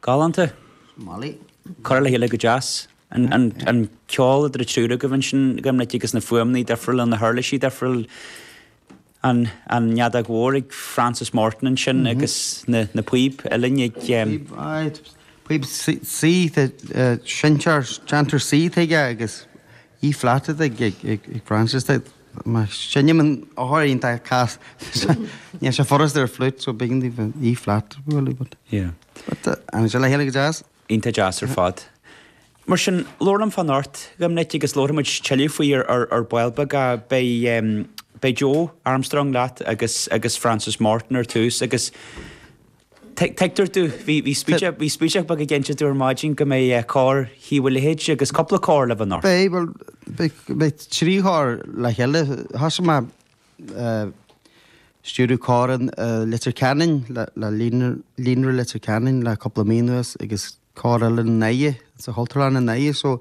Galánta. Mollie. Curtha le chéile go deas. An ceol idir an triúr agaibh ansin a Dhoimnic agus na fuaimní difriúla, na huirlisí difriúla. An fheadóg mhór ag Frances Morton ansin agus na píob uilleann ag. Píob, aye. Píob suite, seinnteoir, déantóir suite aige agus E flat ag Frances. Mar sin, níl an ábhar iontach casta. Níl sé furasta ar fliúit, so b'éigean daoibh E flat a bhualadh, but. Yeah. But, théann sé le chéile go deas? Iontach deas ar fad. Mar sin, labhair liom fá anocht, a Dhoimnic, agus labharfaidh muid tuilleadh faoi ar ar ball beag. Beidh, beidh Joe Armstrong leat agus agus Frances Morton ar dtús agus. Tuigtear domh, bhí spúinseach beag ag insint dom ar maidin go mbeidh Cór Thaobh a' Leithid agus cúpla cór le bheith ann. Beidh, bhuel, beidh trí chór le chéile. Thosaigh mé stiúradh cór i Leitir Ceanainn, le Líonra Leitir Ceanainn le cúpla mí anuas agus cór eile i nDoire, sa Chultúrlann i nDoire so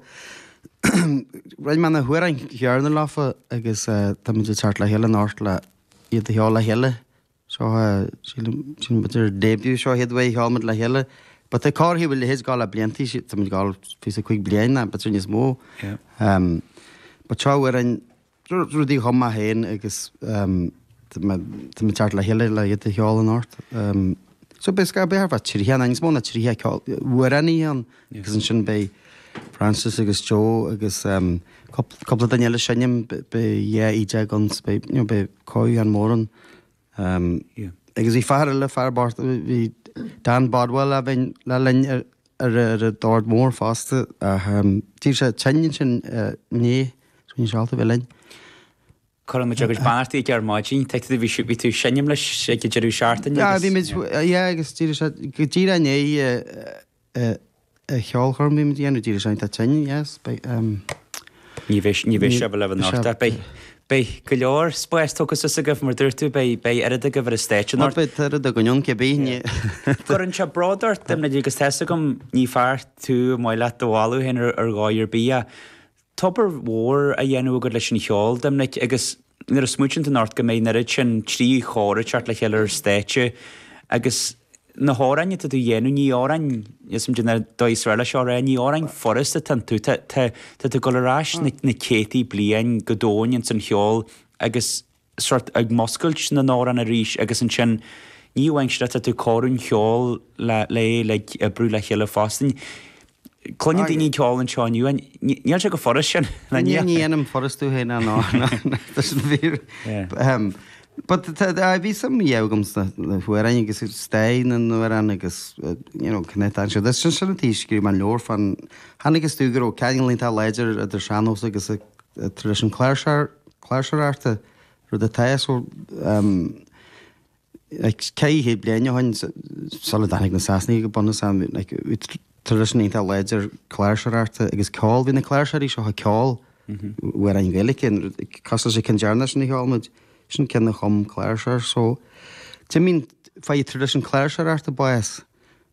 roinn mé na hamhráin chéanna leofa agus táimid ag teacht le chéile anocht le iad a cheol le chéile. Seo é, sílim, sílim gur ar début seo iad uaidh a sheolamar le chéile. But é comharthaí a bhfuil leithéid gá le blianta, sí, táimid gá le píosa cúig bliain ná b'fhéidir níos mó. Ehm, but seo uair an, rudaí dhom maith fhéin agus, ehm, tá mé, tá mé ceart le chéile le iad a sheoladh in ort. Ehm, so b'fhéidir, scáth, b'fhéidir thar fá tríocha, ná níos mó ná tríocha ceol, uair an oíche ann. agus ansin beidh Frances agus Joe agus cúpla duine eile seinm, beidh dhá fhidil againn so beidh, you know, beidh crowd an mór ann. Agus bhí fear eile, fear Bártaí, bhí Dan Bodwell le bheith linn ar ar ar an dord mór fosta ach d'éirigh sé tinn ansin inné so níl sé ábalta bheith linn. Cuireann muid agus Barty ag ar maidin, tuigfidh tú, bhí bhí tú seinm leis ag an deireadh seachtaine. Yeah, bhí muid, yeah, agus d'éirigh sé go díreach i ndiaidh an cheolchoirm a bhí muid a dhéanamh d'éirigh sé iontach tinn, yes, beidh, ehm. Ní bheidh, ní bheidh sé libh anocht ach beidh, beidh go leor spáis tógtha suas agaibh, mar dúirt tú, beidh, beidh oiread agaibh ar an stáitse anocht. Beidh oiread againn ann, cibé, ní. Cuireann sé bród ort, a Dhoimnic, agus tá's agam, ní fear tú ar maith leat do mholadh féin ar dhóigh ar bith ach, tá obair mhór á dhéanamh agat leis an cheol, Doimnic, agus nuair a smaoitíonn tú anocht go mbeidh an oiread sin trí chór ag teacht le chéile ar stáitse agus na hamhráin atá tú a dhéanamh, ní amhráin, níl 's agam caidé an dóigh is fearr leis seo a rá, ní amhráin furast atá iontu, tá, tá, tá tú ag dul ar ais na céadtaí bliain go domhain ins an cheol agus. sórt ag múscailt na n-amhrán arís agus ansin ní amháin ach tá tú ag cur an cheoil le lé le ag oibriú le chéile fosta. Cluineann daoine an ceol anseo inniu agus níl sé go furas sin le Ní ní dhéanaim furas tú féin ná ná tá sin fíor ahem But tá tá bhí suim a fhios agam sna na hamhráin agus stair na n-amhrán agus you know cné atá anseo Sin sin an taobh scríobh mé leabhar faoin chonaiceas tú go raibh ceangal iontach láidir idir sean-nós agus tar éis an chláirseararta, rud atá ó ceithre chéad bliain ó shin, sula dtáinig na Sasanaigh go bunúsach, traidisiún iontach láidir cláirseoireachta agus ceol, bhí na cláirseoirí seo ag ceol ar an Ghaeilge, cosúil leis an chinn deireanach sin a cheol muid, sin ceann a chum cláirseoir, so, d'imigh, fuair traidisiún na cláirseoireachta bás,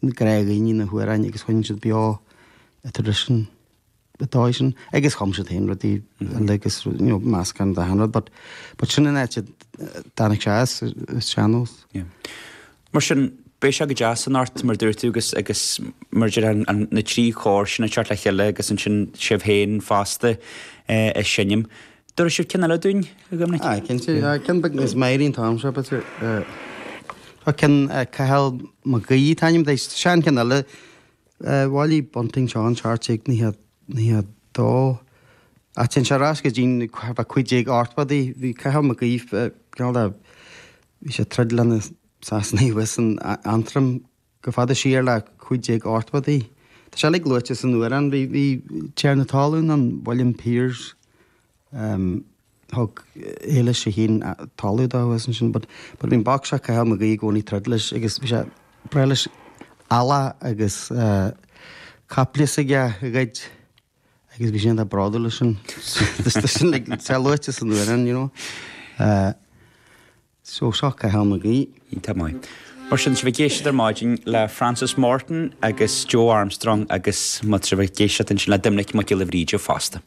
ghlac daoine na hamhráin agus choinnigh siad beo an tradition ar an dóigh sin agus chum siad féin rudaí eile agus meascán d'achan rud but sin an áit a dtáinig sé as, an sean-nós. Mar sin, beidh sé go deas anocht mar dúirt tú agus agus mar deir tú na trí chór sin ag teacht le chéile agus ansin sibh féin fosta ag seinm. Tabharfaidh sibh ceann eile dúinn a Dhoimnic. Ah, cinnte, ceann beag níos meidhrí an t-am seo, b'fhéidir. An ceann Cathal Mac Aoidh an t-ainm atá air, sean ceann eile. Bhailigh Bunting seo i seacht déag nócha dó. Ach téann sé ar ais go dtí na cúig déag ochtóidí. Bhí Cathal Mac Aoidh, cineál de, bhí sé ag troid leis na Sasanaigh abhus in Aontroim. go fada siar leis na 1580idí. Tá sé uilig luaite san amhrán. Bhí tiarna talún ann, William Piers, thug Éilis a hAon talamh dó agus ansin but but bhí an boc seo Cathal Mac Aoidh i gcónaí ag troid leis agus bhí sé ag breith leis eallach agus caiple is é ag goid agus bhí sé an-bhródúil as sin tá sé luaite san amhrán you know. So seo é anois. Tá go maith. Mar sin, tá sibh ag éisteacht ar maidin le Frances Morton agus Joe Armstrong agus tá sibh ag éisteacht ansin le Doimnic Mac Giolla Bhríde fosta.